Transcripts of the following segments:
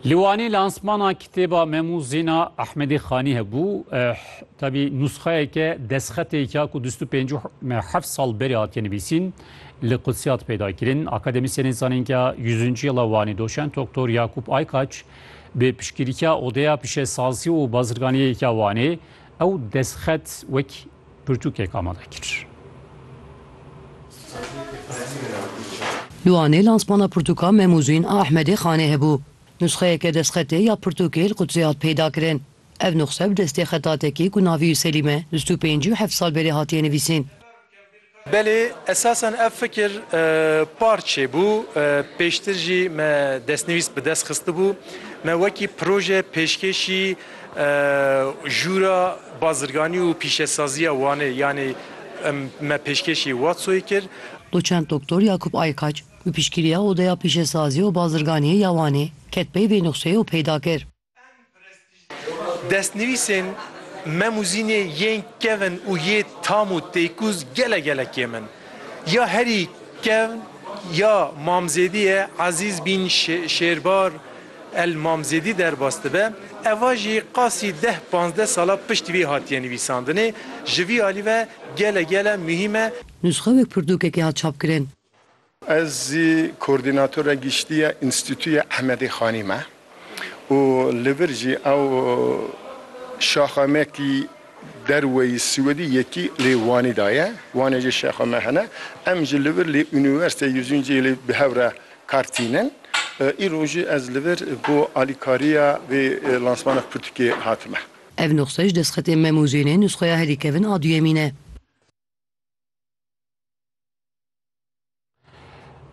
Li Wanê lansmana kitêba Memû Zîna Ehmedê Xanî hebû. Tevî nûsxeyeke destxetêk ya ku dûst û pêncû heft sal berê hatiye nivîsîn li Qudsî hat peyda kirin. Akademîsyenên zanîngeha Yüzüncü Yıla Wanê doçent Doktor Yakup Aykaç bi piştgirîka Odeya Pişesazî û Bazirganiyê ya Wanê ew destxet wek Pirtûkek amade kir. Li Wanê lansmana pirtûka Memûzîn a Ehmedê Xanê hebû. Nusxeyeke destxetê ya pirtûkê li Qudsê hat peydakirin. Ev nûxse bi destê xetatekî ku navî Selîm e bîst û pêncî û heft sal berê hatiye nivîsîn. Belê, esasen ev fikir par çêbû, pêştir jî me destnivîs bi dest xistibû, me wekî proje pêşkêşî Jûra Bazirganî û Pîşesaziya Wanê yanî me pêşkêşî Watsoyê kir. Doçent Doktor Yakup Aykaç bi piştgiriya Odeya Pîşesazî û Bazirganî ya Wanê ket pey vê nuqseyê û peyda kir. Destnivîsên Mem û Zînê yên kevn û yê tam û têkûz gele gele kêm in. Ya herî kevn ya Mamzêdî ye Ezîz Bîn Şêrbar El Mamzêdî derbas dibe. Eva jî qasî deh panzdeh sala pişt vî hatiye nivîsandinê. Ji vî alî ve gele gele muhîm e. Nûsxewek pirtûkekê hat çapkirin. Ez zî koordînatora giştî ya Înstîtuya Ehmedê Xanî me û li vir jî ew şaxa me kî derweyî Swêdî yekî lê Wanî da ye. Wanê jî şaxa me hene. Em jî li vir lê Unîversîteya Yuzîncî lê bi hev re kar tînin. Îro jî ez li vir bo alîkariya vê lansmana pirtûkê hatime. Ev nuxse ji destxetên Memûzênê nusxeya herî kevin a duyemîn e.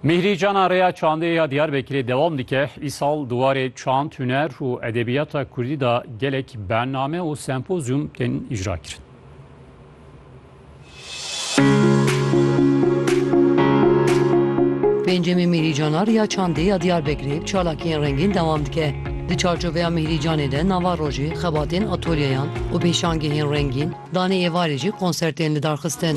Mîhrî cana rêya çandê ya Diyarbekirê dewam dike. Îsal di warê çand, huner û edebiyata Kurdî de gelek bername û sempozyum tên îcra kirin. Pêncemîn Mîhrî cana rêya çandê ya Diyarbekirê bi çalakiyên rengîn dewam dike. Di çarçoveya Mîhrî canê de nava rojê, xebatên atolyeyan û pêşangehên rengîn, danê êvarê jî konsertên lidarxistin.